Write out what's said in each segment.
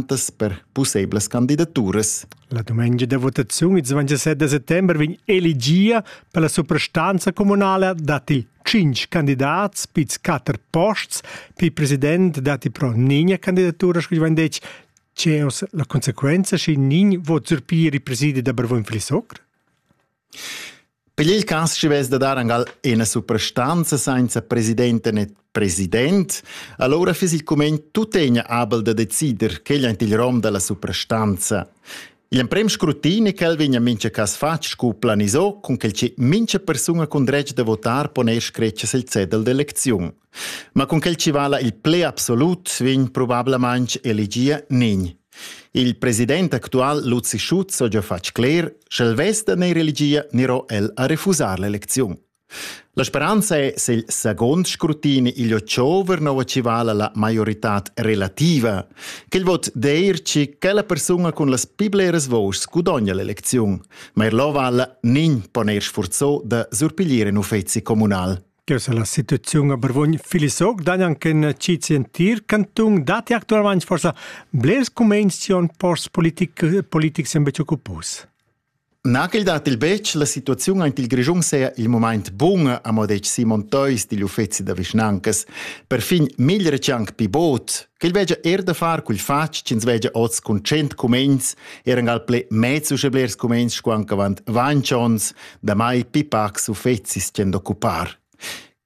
per pusseivlas candidaturas. La dumengia da votaziun il 27 settembre vegn elegia per la suprastanza comunale dati 5 candidats, piz 4 posts, pi president dati pro nigna candidatura, scu vegn detg, ceos la conseguenza schi nin vot surpiri presidi da Bervon Flisocr? Pigl il cass schi vess da dar angal ena suprastanza sainza presidenta né president, allora fiss il cumegn tuttegna abel da decider quegl aint il rom dalla suprastanza. L'emprem scrutin è ch'el vegna mincha cas fatg scu planisò, cun quel che mincha persuna cun dretg da votar pon eir scretger il cedel d'elecziun. Ma cun quel chi vala il pled absolut vegn probablamaing elegia nin. Il president actual Luzi Schutz ha già fatg cler sch'el vesta ne religia nero el a refusar l'elecziun. La speranza è se il second scrutini il chiover nova ci vala la maiorità relativa, che il vot deir ci che la persona con las più bleres voci gudogna l'elezione, ma er lo vala nin poner sforzo da surpigliere un uffizi comunal. Cheu sa la situaziun a Barvogn Filisog dan anche in cizi entir canton dati actualmente forse blers comenzion post politic politic sempre occupus. Nagel dat il betg la situaziun aint il Grischun sea il moment bun a modech Simon Theus digl uffezi da vischnancas. Per fin mil recianc pi bot, Quel vegia er da far quel fatg ch'ins vegia oz cun tschient cumegns, eran al ple mez uschè blers cumegns sco anc avant ventg onns, damai pipacs uffecis ch'en d'occupar.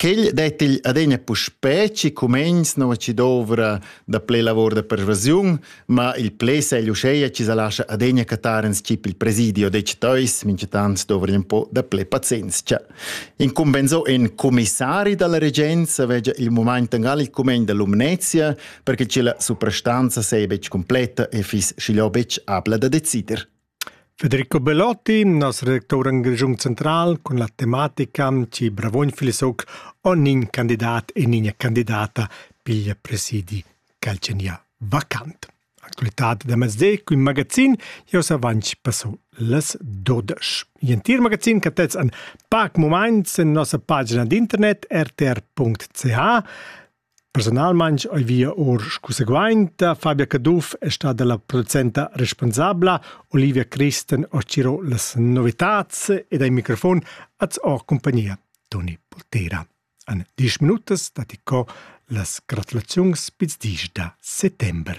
Quel dettigl adegna puspè ci cumegns nova ci dovra da ple lavor da pervasiun, ma il ple segl uscheia ci sa lascia adegna cattar en scip il presidio dec teus, minchatant dovrien po da ple pazienzia. Incumbensò in comissari dalla regenza vegia il moment engal il cumen da Lumnezia perché che la suprastanza sei betg completa e fis schiglio betg abla da decider. Federico Bellotti, nos redactor in Grigiun Central, con la tematica ci Bravogn Filesoc ognin candidat e nina candidata piglia presidi calcenia vacant. Ascoltate da mezdi cun magazin Jos avanci passo las 12. Gentil magazin che tets an pac moments en nossa pagina d'internet rtr.ch Personalment ho via or scuseguainta Fabia Caduff è stata la producenta responsabla Olivia Christen ho ciro las novitats ed ai microfon az ho compagnia Toni Poltera. En diesch minutas datti co las gratulaziuns pils dis da settember.